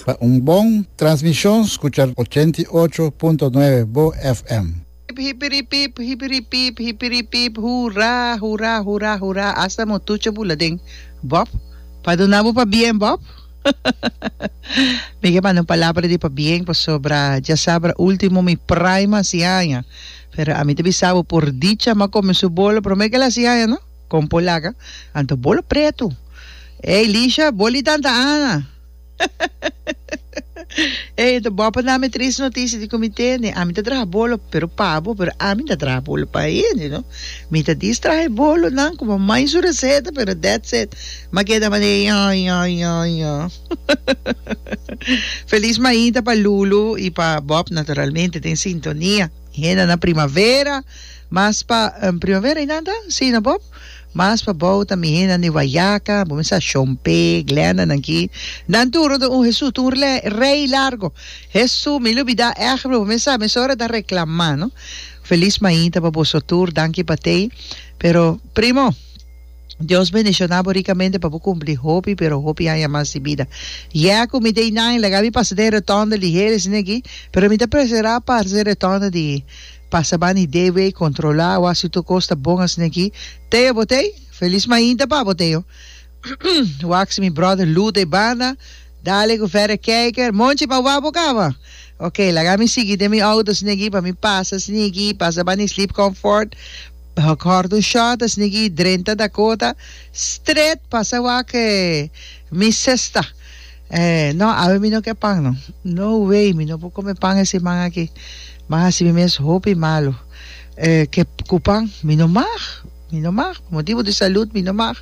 Pa un bon transmishon skucha ochenta i ocho punto nuebe Bo FM. Pip hipiripip hipiripip hipiripip hura hura hura hura asta mo tucha bula den Bob pa duna bo pabien Bob mi ke manda un palabra di pabien pasobra djasabra ultimo mi prime hasi aña Pero ami ta bisa bo por dicha ma come su bolo prome kel asi aña no? Con polaca, anto bolo pretu. Ey Lisha, bolo di tanta Ana. Ey anto bo a por nami triste noticia di cu mi tene. Ami ta traha bolo pero pa bo, pero ami ta traha bolo pa hende no. Mi ta dis traha e bolonan como mai su receta pero that's it. Ma keda manera, ya, ya, ya, ya. Feliz maida pa Lulu y pa Bob naturalmente den sintonia. Henda na primavera mas pa primavera y nan ta? Si no Bob? Mas pa bou ta mi henda di Guayaca, bo mester a shompe, Glenda nan ki. Nan tur no ta un Hesu, ta un rle, rey largo. Hesu mi lubida ehemplo bo mester sa mesora ta reclama no. Feliz maida pa boso tur danki pa tey pero primo. Dios bendiciona bo ricamente pa bo cumpli hopi pero hopi haña mas di bida. Yeah cu mi day nine laga mi pasa den rotonda liher esne aki pero mi ta presera parse den rotonda di pasa bani DW controla awa si tur cos ta bon esne aki. Teo botey Feliz mainta pa bo Teo. Waxy mi brother Lou de banda dale cu verder kijker monchi pa wak bo cama. Ok laga mi sigui den mi auto esne aki pa mi pasa esne aki pasa bani sleep comfort. Bajo Gordon Shaw ta snigi i drenta Dakota stret pasa wak-e mi sesta. No, awe mi no ke pan no. No way, mi no por kome pan e siman aki. Ban hasi mi mes hopi malu ke ku pan. Mi no mag, mi no mag. Por motibu di salud mi no mag.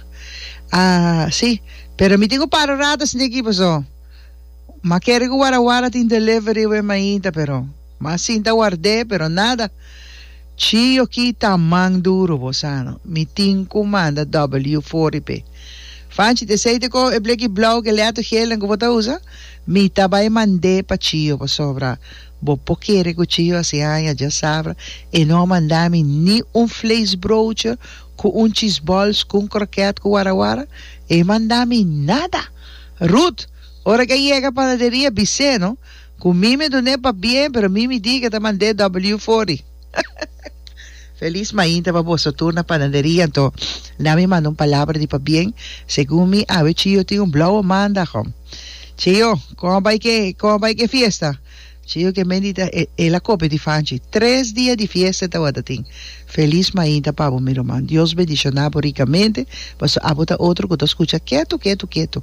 A si, pero mi tin ku para un rata snigi paso ma kere ku warawara tin delivery awe mainta pero. Ma sinta ward'é pero nada. Chi yo kita man duro bos ano mi tin cu manda W for y pe fanchi t'e aceite co e bleki blauw ke leatu gelen cu bo ta usa mi ta bay mand'é pa chiyo pasobra bo por kere cu chiyo a si hanja dja sabra e no a manda mi ni un vleesbroodje cu un cheese balls cu un croquet cu wara wara e manda mi nada Ruth ora ke a yega panaderia bise no. Cu mi mi dun'e pa bien, pero mi mi di que ta mand'e W fori. Feliz mainta pa boso tur na panaderia, anto na mi manda un palabra di pa bien, segun mi awe Chio tin un blauwe maandag ho. Chio, con a bai ke, con a bai ke fiesta? Chio ke mendita e, el a kopia di Fanchi. Tres dia di fiesta e tawata tin. Felis mainta pa bo mi ruman. Dios bendiciona bo ricamente paso abo ta otro cu ta scucha ketu ketu ketu.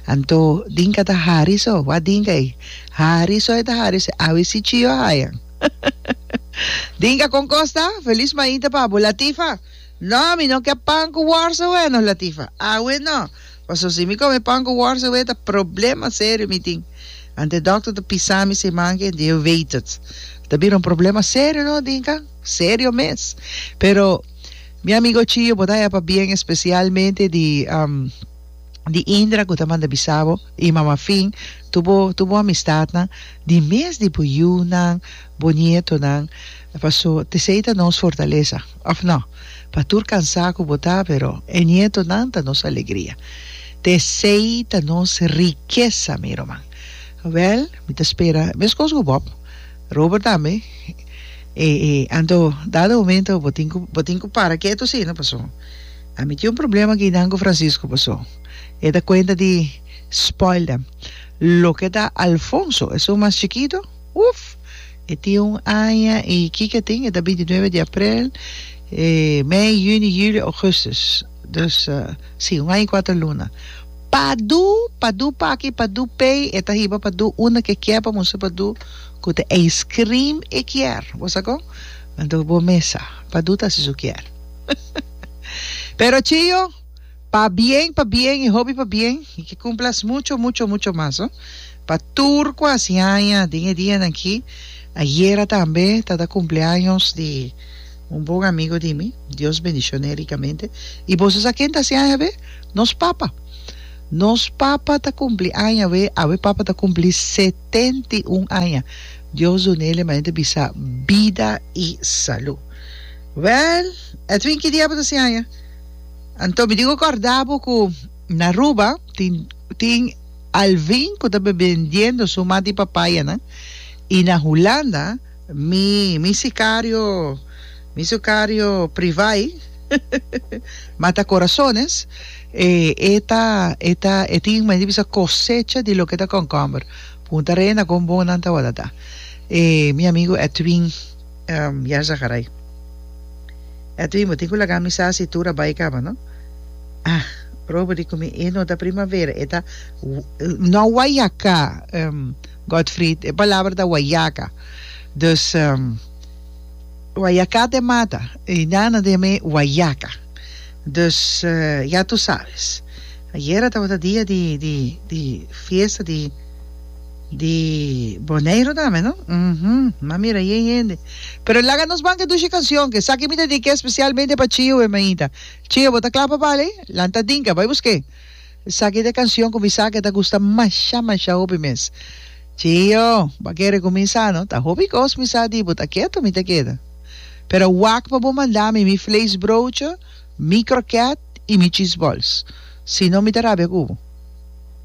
Anto dinka ta hari so? Wak dinka ey. Hari so e ta hari se awe si chio hayan. Dinka con cos ta? Felis mainta pa bo Latifa. No mi no ke pan cu worst away no Latifa. Awe no. Paso si mi come pan cu worst away ta problema serio mi tin. Ante doctor ta pisa mi se man ke ente yo weet het. Ta bira un problema serio no Dinka. Serio mes. Pero mi amigo Chio bo ta hepa bien especialmente di di Indra cu ta manda bisa bo y mama fin tur bo tur bo amistadnan di mes di bo yiunan bo nietonan paso tesey ta nos fortaleza of no pa tur cansa cu bo ta pero e nietonan ta nos alegria tesey ta nos rikesa mi roman. Wel mi ta spera mescos cu bob. Robert tambe e e anto dado momento bo tin ku bo tin ku para keto asina paso a mi tin un problema aki nan ku Francisco paso e ta kuenta di spoil them loke ta Alfonso esun mas chikito uf e tin un aña y kiko e tin e ta bintinuebe di aprel e mei juni julio augustus Dus, si, un aña i kuater luna. Padu, padu pa aki, padu p'ey, e ta hiba padu unda ke kier pa mustra padu ku te ijskrim e kier. Bo sa kon? Anto bo mesa, padu ta hasi su kier. Pero chio, pa bien, pa bien i hopi pa bien, i ke kumplas mucho, mucho, mucho mas, no? Pa tur ku a hasi aña den e dianan aki, ayera tambe ta ta kumpleaños di. Un bon amigo di mi, Dios bendicione ricamente. Y boso sa ken ta haci aña awe? Nos papa. Nos papa ta cumpli aña awe, awe papa ta cumpli setenta y un aña. Dios dunele manente bisa bida y salud. Well, Edwin ki dia bo ta haci aña? Anto mi tin cu corda bo cu na Aruba tin tin Alvin cu ta bendiendo su mati papayanan y na Hulanda, Mi, mi sicario, mi sucario privai mata corazones, e e ta e ta e tin madi bisa cosecha di loke ta concomber. Punta reina con bon nan ta wada ta. E mi amigo Edwin um Yarzagarrai. Edwin bo tin cu laga mi sa si tur a bai caba no. Ah probo di cu mi e no ta primavera e ta no a waya ca um. Godfried, e palabra ta wayaka. Dus, wayakat e mata, i nan a deja me wayaka. Dus, ya tu sabes. Ayera tabata dia di, di, di fiesta di, di Boneiru tambe, no? Uhumm. M'a mira aye e hende. Pero laga nos ban ke dushi canción, ke esaki mi ta di ke especialmente pa Chio, e mainta. Chio, bo ta kla pa bali? Lanta dinka, bai busk'é. Esaki ta e canción cu mi sa cu e ta gusta masha masha hopi mes. Chio, bo a kere cu mi sa no? Ta hopi cos mi sa di bo, ta keto mi ta keda. Pero wak pa bo manda mi mi vleesbroodje, mi kroket y mi cheeseballs. Si no mi ta rabia cu bo.